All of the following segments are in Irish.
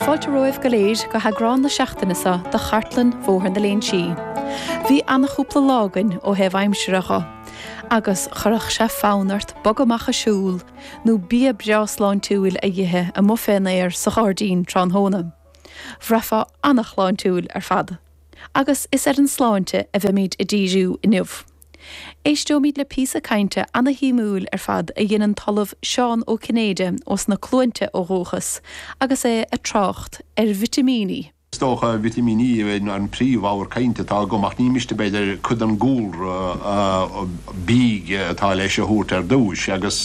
Fáilte romhaibh go léir go heagrán na seachtaine seo de Chartlann Bhóthar na Léinsí. Bhí ana-chúpla lá againn ó thaobh aimsire dho, agus chuirfeadh sé fonn ort bogadh amach a siúl, nó bia breá sláintiúil a dh'ithe amuigh fén aer sa ghairdín tráthnóna. Bhraithfeá ana-shláintiúil ar fad. Agus is ar an tsláinte a bheimid a díriú inniu. Éisteoimid le píosa cainte ana-shuimiúil ar fad a dhein an tOllamh Seán Ó Cinnéide ós na Cluainte ó dhúchas agus é ag trácht ar vitimíní. Is dócha vitimíní a bheith an príomh-abhar cainte atá agam ach ní miste b'fhéidir cuid den gcúlra bídh atá leis a thabhairt ar dtúis agus.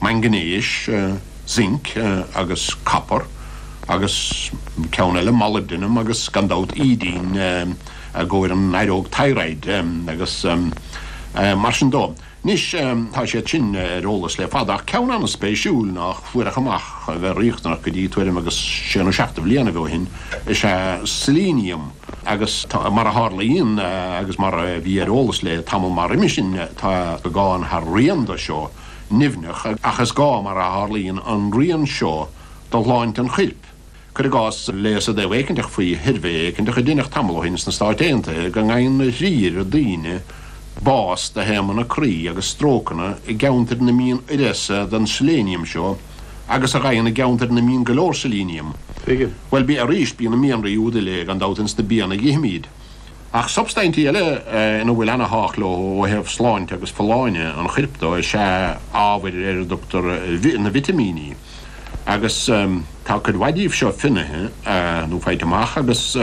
maingnéis, zinc agus copar, agus ceann eile molybdenum agus gan dabht iaidín i gcomhair an fhaireog thyroid agus mar sin dó. Anois tá siad sin ar eolas le fada ach ceann an-spéisiúil nách fuaireadh amach a bheith riachtanach go dtí tuairim agus sé nó seacht de bhlianaibh ó shin is ea selenium agus mar a tharlaíonn agus mar a bhí ar eolas le tamall maith roimis sin tá beagán thar rian do seo. nimhneach, ach is gá, mar a tharlaíonn, an rian seo do shláinte an choirp, cuir i gcás, léas áit éiginteach faoi shuirbhé éiginteach a deineadh tamall ó shin sna Stáit Aontaithe go ngeibheann a thrí oiread daoine bás de thaomanna croí agus strócanna i gceantair ina mbíonn uireasa den seiléiniam seo agus a gheibheann i gceantair ina mbíonn go leor seiléiniam. Bhuel, arís, bíonn na mianraí úd uile, gan dabht, ins na bianna a dh'ithimid. Ach substaintí eile ina bhfuil an-tábhacht leo ó thaobh sláinte agus folláine an choirp dó is ea ábhair ar a dtugtar na vitimíní, agus tá cuid mhaith díobh seo finnaithe nó faighte amach agus,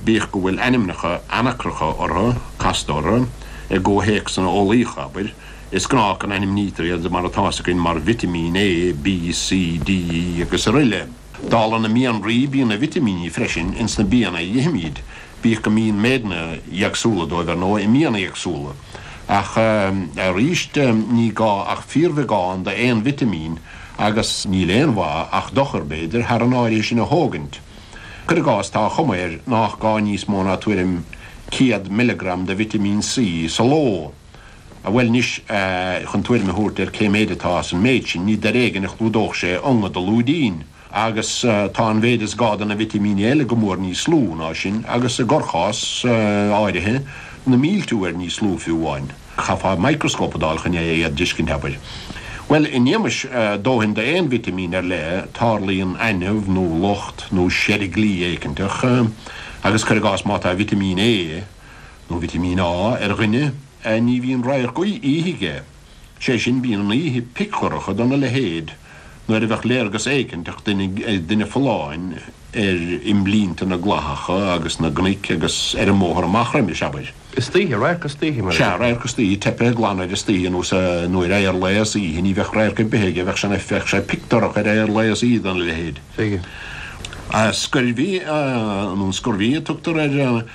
bíodh go bhfuil ainmneacha anacracha orthu, casta orthu, i gcomhthéacsanna eolaíocha, abair, is gnách go n-ainmnítear iad mar atá 's againn mar Vitimín A, B, C, D, E, agus araile. Dála na mianraí bíonn na vitimíní freisin ins na bianna a ithimíd, bíodh go mbíonn méideanna éagsúla dóibh, ar ndóigh, i mbianna éagsúla. Ach arís ní gá ach fíorbheagán d'aon vitimín, agus níl aon mhaith ach dochar, b'fhéidir, thar an áirithe sin a thógaint. Cuir i gcás, tá an chuma air nách gá níos mó ná tuairim 100 milleagram de vitimín C sa ló, Ah bhuel anois, chun tuairim a thabhairt ar cé mhéid atá ins an méid sin, ní ar éigean a chlúdódh sé ionga do lúidín. Agus tá an mhéid is gá de na vitimíní eile go mór níos lú ná sin, agus i gcorrchás áirithe, na mílte uair níos lú fiú amháin. Chaithfeá microscope a d'fháil chun é a dh'fheiscint, abair. Bhuel, in éagmais dóthain d'aon vitimín ar leith, tarlaíonn ainimh nó locht nó seirglí éiginteach, agus cuir i gcás má tá vitimín A, nó vitimín A ar dhuine a ní bhíonn radharc oíche aige, sé sin bíonn an oíche pic dorcha do na leithéid nuair a bheadh léargas éicinteach ag duine folláin ar imlínte na gclathacha agus na gcnoic agus ar an mbóthar amach roimhe is abair. Istoíche, radharc istoíche mar a Sea, radharc istoíche, teipthe glan air istoíche nó sa nuair a ar leigheas oíche ní bheadh radharc ar bith aige bheadh sé bheadh sé pic dorcha ar ar leigheas oíche do na leithéid. Bheadh. Scurvy nó an scurvy a tugtar ar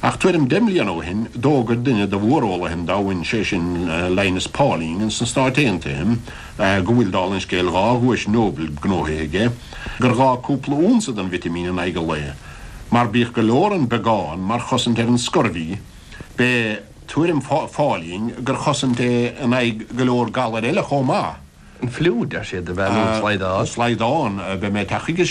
Ach tuairim deich mbliana ó shin, d'fhógair duine de mhóreolaithe an domhain, sé sin Linus Pauling ins na Stáit Aontaithe, go bhfuil, dála an scéil, dhá dhuais Nobel gnóthaithe aige, gur ghá cúpla unsa den vitimín in aghaidh an lae. Mar bíodh gur leor an beagán mar chosaint ar an scurvy, b'é tuairim Phauling gur chosaint é in aghaidh go leor galair eile chomh maith. An fliú, deir siad, a bheadh nó an slaghdán. An slaghdán, beidh mé ag teacht chuige sin.